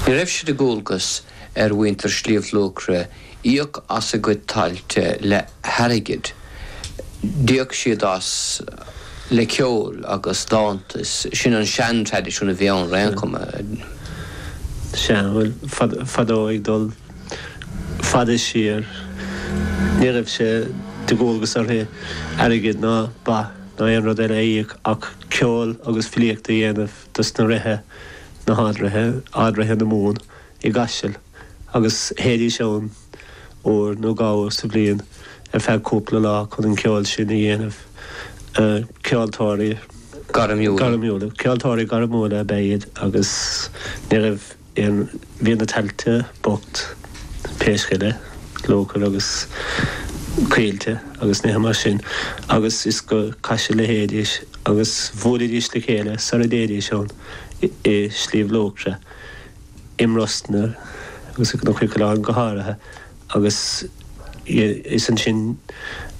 Ní raibh sé de dhualgas ar mhuintir Shliabh Luachra íoc as a gcuid tailte le hairgead, d'íoc siad as le ceol agus dánta, is sin an sean-traidisiún a bhí ann, ar aon chuma. Sea, bhuel, fadó, ag dul fada siar, ní raibh sé de dhualgas orthu airgead ná ba ná aon rud eile a íoc ach ceol agus filíocht a dhéanamh. de sna ríthe, na hardríthe, ardríthe na Mumhan, i gCaiseal agus théidís ann uair nó dhá uair sa bhliain ar feadh cúpla lá chun an ceol sin a dhéanamh. Ceoltóirí gairmiúla, ceoltóirí gairmiúla ab ea iad agus ní raibh. Bhí na tailte bocht, riasc agus, luachair agus coillte agus nithe mar sin, agus is go Caiseal a théidís, agus bhuailidís le chéile sara dtéidís ann, i Sliabh Luachra, i mBrosna agus i gCnoc Coileáin go háirithe, agus is ansin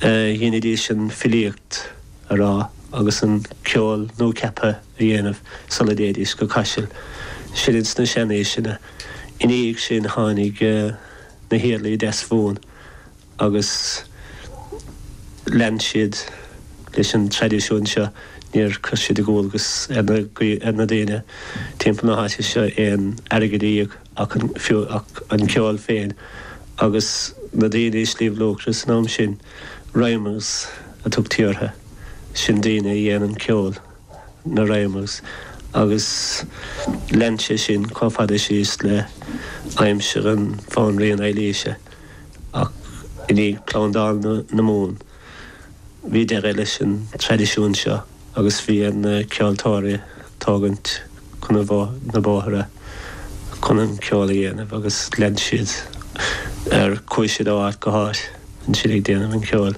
a dheinidís an filíocht. a rá agus an ceol nuacheaptha a dhéanamh sula dtéidís go Caiseal sin ins na seanaoiseanna. I ndiaidh sin tháinig na hIarlaí Deasmhumhan agus lean siad leis an traidisiún seo. Níor chuir siad de dhualgas ar na daoine timpeall na háite seo aon airgead a íoc. ach an fiú ach an ceol féin agus na daoine i Sliabh Luachra san am sin? Rhymers a tugtaí ortha. Sin daoine a dhéanann ceol, na rhymers, agus lean sé sin chomh fada síos le aimsir an Bhanríon Eilíse ach i ndiaidh Plandáil na Mumhan, Bhí deireadh leis an traidisiún seo agus bhí ar na ceoltóirí tógaint chun na bóithre chun an ceol a dhéanamh agus lean siad air. Chuaigh siad ó áit go háit ansin ag déanamh an cheoil.